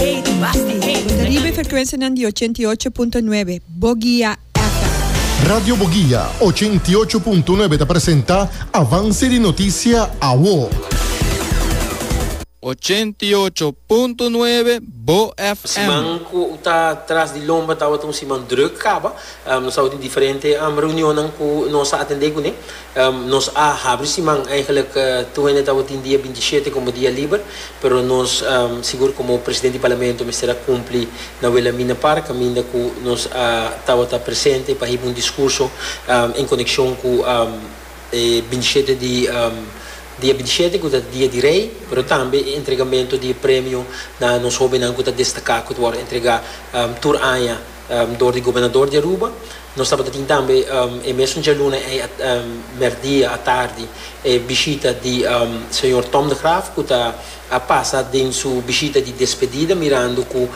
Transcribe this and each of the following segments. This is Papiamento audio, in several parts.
Riba e frekwensianan di ochenta i ocho punto nuebe, Bogia FM. Radio Bogia ochenta i ocho punto nuebe ta presenta Avance di Noticia Awo. Ochenta i ocho punto nuebe, Bo FM. Siman ku ta tras di lomba tabata un siman drùk kaba. Nos tabata di diferente reunionnan ku nos a atendé kuné. Nos a habri siman, eigenlijk tur hende tabatin dia binti i shete komo dia liber, pero nos sigur komo presidente di Parlamento mester a kumpli na Wilhelmina Park kaminda ku nos a tabata presente pa hiba un diskurso en konekshon ku e binti i shete di dia binti i shete ku ta dia di rei, pero tambe e entregamentu di e premio na nos hobennan ku ta destaká ku ta wòrdu entregá tur aña Dor di Gobernador di Aruba, nos tabatin tambe e mesun djaluna ei merdia atardi e bishita di Señor Tom de Graaf cu ta a pasa den su bishita di despedida mirando cu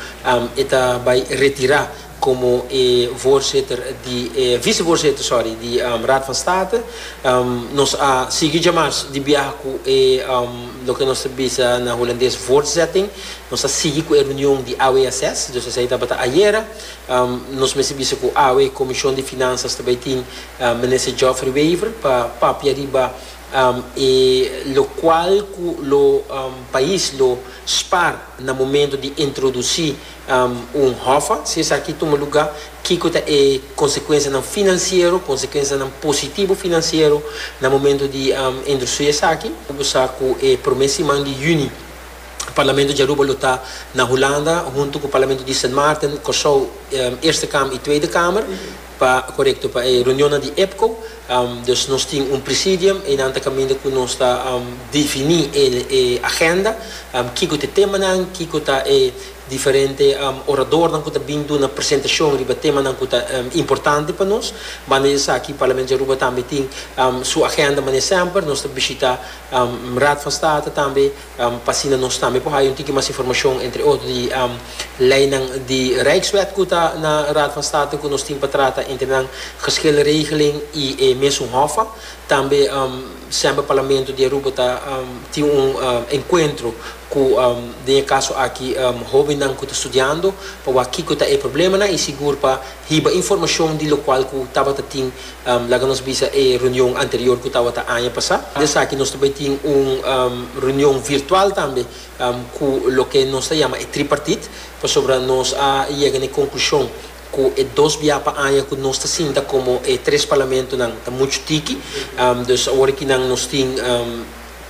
e ta bay retira como e voorzitter di e vicevoorzitter, sorry, di Raad van State. Nos a sigui djamas di biaha cu e loke nos ta bisa na Holandes voortzetting. Nos a sigui cu e reunion di AWSS, dus esei tabata ayera. Nos mester bisa cu awe Comision di Finanzas ta bay tin Minister Geoffrey Wever pa papia riba e locual cu lo pais lo spaar na momento di introduci un hoffa. Si esaki tuma luga, kico ta e consecuencianan financiero, consecuencianan positivo financiero na momento di introduci esaki? Bo sa cu e prome siman di juni Parlamento di Aruba lo ta na Hulanda hunto cu Parlamento di Sint Maarten, Corsou, Eerste Kamer y Tweede Kamer pa, corecto, pa e reunionnan di EPCO. Dus nos tin un presidium, eynan ta caminda cu nos ta defini e agenda, kico ta e temanan, kico ta e diferente oradornan cu ta bin duna presentacion riba temanan cu ta importante pa nos. Banda di esaki Parlamento di Aruba tambe tin su agenda mane semper. Nos ta bishita Raad van State tambe. pa asina nos tambe por haya un tiki mas informashon, entre otro di leinan di Rijkswet ku ta na Raad van State ku nos tin pa trata entre nan, Geschil Regeling i e mesun Hof a. Tambe semper Parlamento di Aruba ta tin un enkuentro ku, den e kaso aki, hobennan ku ta studiando pa wak kiko ta e problemanan i sigur pa Hiba informashon di lokual ku tabata tin, laga nos bisa e reunion anterior ku tabata aña pasá. Di esaki nos ta bai tin un reunion virtual tambe ku loke nos ta yama e tripartit, pasobra nos a yega na e konklushon ku e dos biaha pa aña ku nos ta sinta komo e tres parlamentonan ta muchu tiki. Dus awor aki nan nos tin.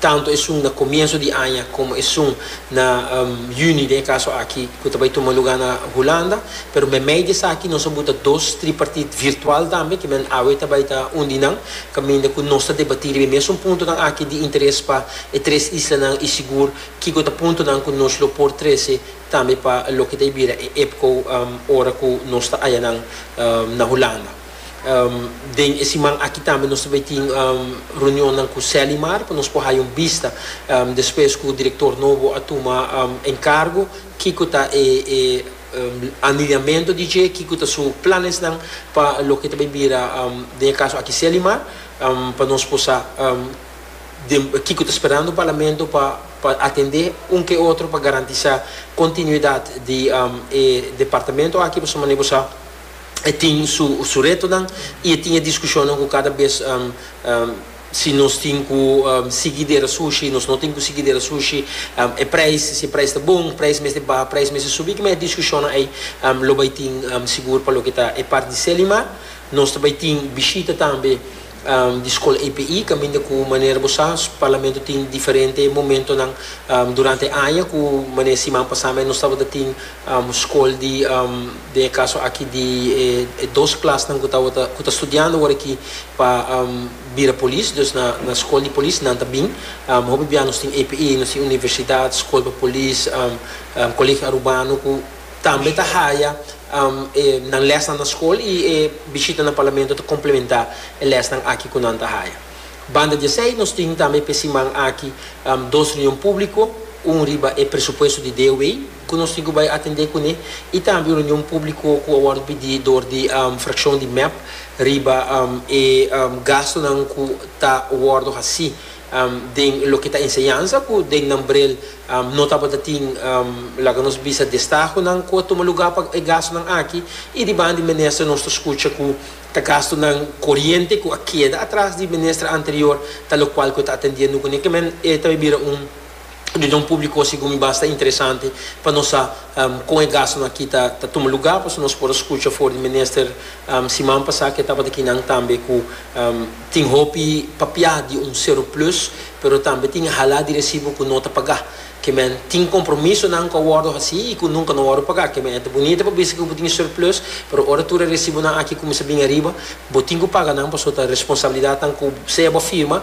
tantu esun na comienzo di aña como esun na Juni den e caso aki cu ta bay tuma lugar na Hulanda, pero memey di esaki nos a buta dos tripartite virtual tambe ki men awe ta bay ta un di nan caminda cu nos ta debati riba e mesun puntonan aki di interes pa e tres islanan y sigur kico ta puntonan cu nos lo por trece tambe pa loke ta a bira e EPCO ora cu nos ta aya nan na Hulanda. Den e siman aki tambe nos ta bay tin reunionnan cu Selimar pa nos por haya un bista despues cu director nobo a tuma encargo kico ta e aniliamento di dje, kico ta su planesnan pa loke ta bay bira den e caso aki Selimar pa nos por sa den kico ta sperando Parlamento pa pa atende un ke otro pa garantisa continuidad di e departamento aki pasobra manera bo sa. e tin su retonan y e tin e discusionnan cu cada bes si nos tin cu sigui dera sushi, nos no tin cu sigui dera sushi, e prijs, si e prijs ta bon, prijs mester baha, prijs mester subi, kiman e discusionnan ey lo bay tin sigur pa loke ta e part di Selimar. Nos ta bay tin bishita tambe di Skol API, kaminda ku manera bo sa, Parlamento tin diferente momentonan durante aña, ku manera siman pasá mes nos tabata tin skol di, den e kaso aki di e dos klasnan ku tabata, ku ta studiando wor aki pa bira polis, dus na na skol di polis nan ta bin, hopi bia nos tin API, nos tin universidat, skol pa polis, kolegio arubano ku. Tambe ta haya e nan lesnan na skol i e bishita na Parlamento ta komplementá e lesnan aki ku nan ta haya. Banda di esei nos tin tambe p'e siman aki dos reunion públiko, un riba e presupuesto di DOW ku nos tin ku bai atendé kuné i tambe un reunion públiko ku a wòrdu pidi dor di frakshon di mep riba e gastunan ku ta wòrdu hasí den loke ta enseñansa ku den nan brel no tabata tin laga nos bisa destahonan ku a tuma lugá pa e gastunan aki i di banda di minister nos ta skucha ku ta gastunan koriente ku a keda atras di minister anterior talokual ku e ta atendiendo kuné kimen e ta bira un di don públiko segun mi basta interesante pa nos sa kon e gastunan aki ta ta tuma lugá pasobra nos por a skucha for di minister siman pasá ke tabata kinan tambe ku tin hopi papiá di un seroplus pero tambe tin halá di resibo ku no ta pagá kimen tin kompromisonan ku a wòrdu hasí i ku nunka no a wòrdu pagá kimen e ta bunita pa bisa ke bo tin seroplus pero ora tur e resibonan aki kuminsá bin ariba bo tin ku paga nan pasobra ta responsabilidatnan ku sea bo firma.